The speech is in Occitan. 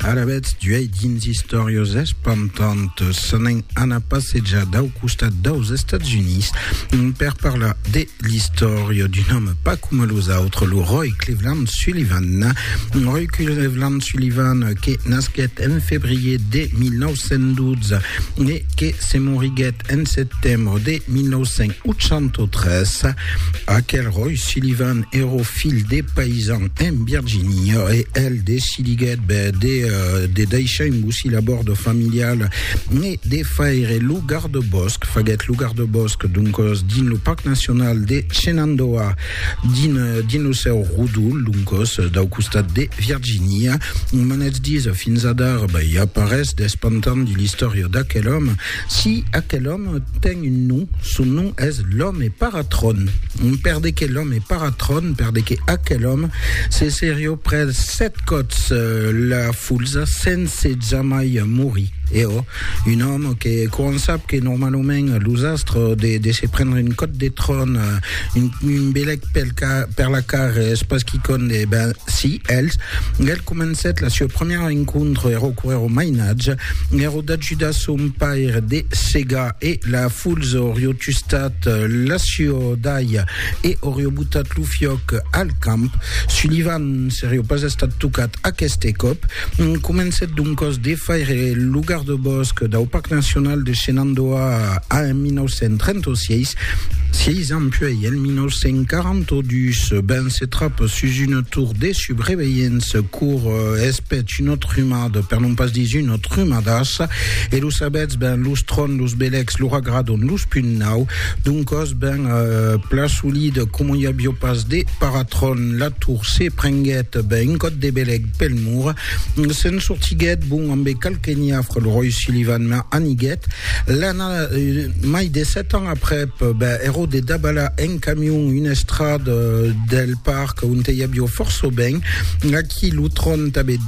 Ara vètz d'uèi dins istòrias espantantas. S'anèn anar passejar dau costat daus Estats Units per parlar de l'istòria d'un òme pas coma los autres, lo Roy Cleveland Sullivan. Roy Cleveland Sullivan que nasquèt en febrier de 1912 e que se moriguèt En setembre de 1983, aquel Roy Sullivan èro filh de paisan en Virginia e el decidiguèt de, de daishar un bocil a bòrd familial e de faire lo gardebòsc. Faguèt lo gardebòsc, doncos, dins lo Parc Nacional de Shenandoah, dins, dins lo seu rodol, doncos, dau costat de Virginia. Manètz dits, fins adara, i a pas res d'espantant dins l'istòria d'aquel òme. Si aquel òme ten un nom, son nom es l'òme Paratron. Per de que l'òme Paratron, per de que aquel òme se serió pres sèt còps la fulsa sense jamai morir. E ò, un òme que quan sap que normalament los astres de de se prendre un còp de tron, un belèc pel ca, per la car es pas quicònd, e ben, si, els, el comencèt la sua premièra encontre, ero coèro mainatge, ero, D'ajudar son paire de segar e la fulz orió tustat l'aciò d'alha e orió botat lo fiòc al camp. Sullivan serió pas estat tocat aqueste còp. Comencèt doncòs de faire lo gardebòsc dau Parc Nacional de Shenandoah en 1936. Sièis ans puèi, en 1942, Ben se trap sus una tor de subreveilhença cour es peth un autre humà, per non pas dire un autre. trumadas, e lo sabètz ben, los tròn, los belecs, lo ragradon, los punt nau, doncòs ben plan solid, coma i avió pas de paratròn, la tour se prenguèt ben un còt de belec pel mur, se'n sortiguèt bon ambe qualque niafre, lo ròi Sullivan me aniguèt, l'ana mai de sèt ans aprèp, ben ero de dabalar en camion una estrada del parc onte i avió fòrça ben, aquí lo tròn tanbe de.